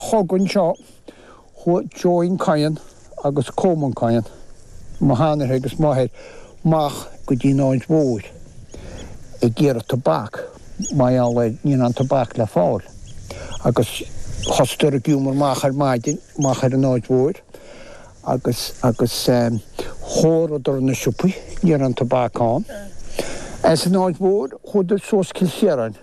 Chogaidh anseo chuaigh John Coyne agus Colman Coyne, mo sheanathair agus m'athair amach, go dtí an Aird Mhóir ag iarraidh tobac, mar gheall air ní raibh aon tobac le fáil, agus thosaíodar ag iomramh amach ar maidin amach ar an Aird Mhóir agus agus chuardaíodar na siopaí, ní raibh aon tobac ann. As an Aird Mhóir chuadar suas Cill Chiaráin.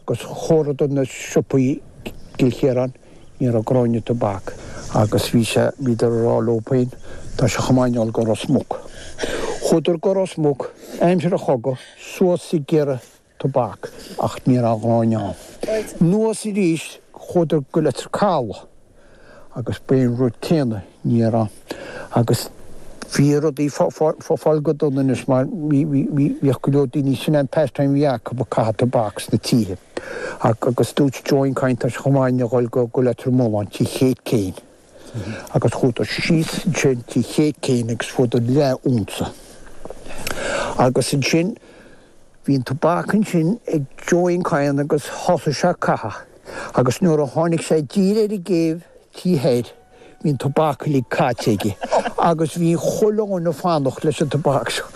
Agus chuardaíodar na siopaí i gCill Chiaráin, ní raibh gráinne tobac agus bhí sé, bhíodar ag rá leo féin, tá sé chomh maith dhúinn a ghoil go Ros Muc. Chuadar go Ros Muc, aimsir an chogaidh, suas ag iarraidh tobac ach ní raibh gráinne ann. Anuas aríst, chuadar go Leitir Caladh. agus bhí an rud céanna ní raibh ann, agus bhí rudaí ag fáil go dona anois mar bhíodh go leor daoine sin an pastime a bhí acu ag caitheamh tobac sna tithe agus dúirt John Coyne tá sé chomh maith dhúinn a dhul go Leitir Móir tigh Kate Keane agus chuadar síos ansin tigh Kate Keane agus fuaireadar leath unsa agus ansin Bhí an tobac ansin ag John Coyne agus thosaigh sé ag caitheamh agus nuair a tháinig sé i dtír ar an gcéibh tí thoir bhí an tobac uilig caite aige agus bhí Colman ag fanacht leis an tobac seo.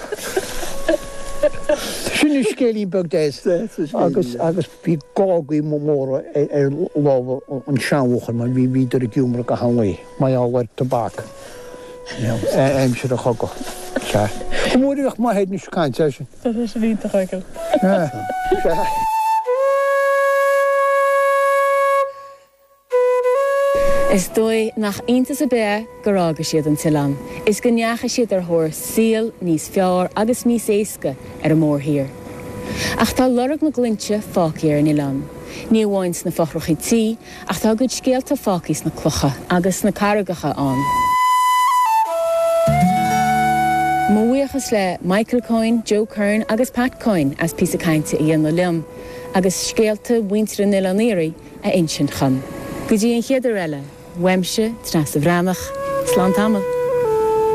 Sin scéilín beag deas agus. Bhí gágaí móra ar lámha an tseanbhuachalla mar bhíodar ag iomramh gach aon lae mar gheall ar tobac aimsir an chogaidh. Sea. Go mór a bhíodh mo Shéadna ag caint air sin. Tá sé sin iontach agat. Sea. Is dóigh nach iontas ar bith é gur fhága siad an t-oileán is go ndeachaigh siad ar thóir saoil níos fearr agus níos éasca ar an mórthír. Ach tá lorg na nglúinte fágtha ar an oileán, ní amháin sna fothracha tí, ach tá a gcuid scéalta fágtha sna clocha agus sna carraigeacha ann. Mo bhuíochas le Michael Coyne, Joe Curran agus Pat Coyne as píosa cainte a dhéanamh liom agus scéalta mhuintir an Oileáin Iarthaigh, a insint dhom. Go dtí an chéad uair eile, uaimse, Treasa Bhreathnach, slán tamall.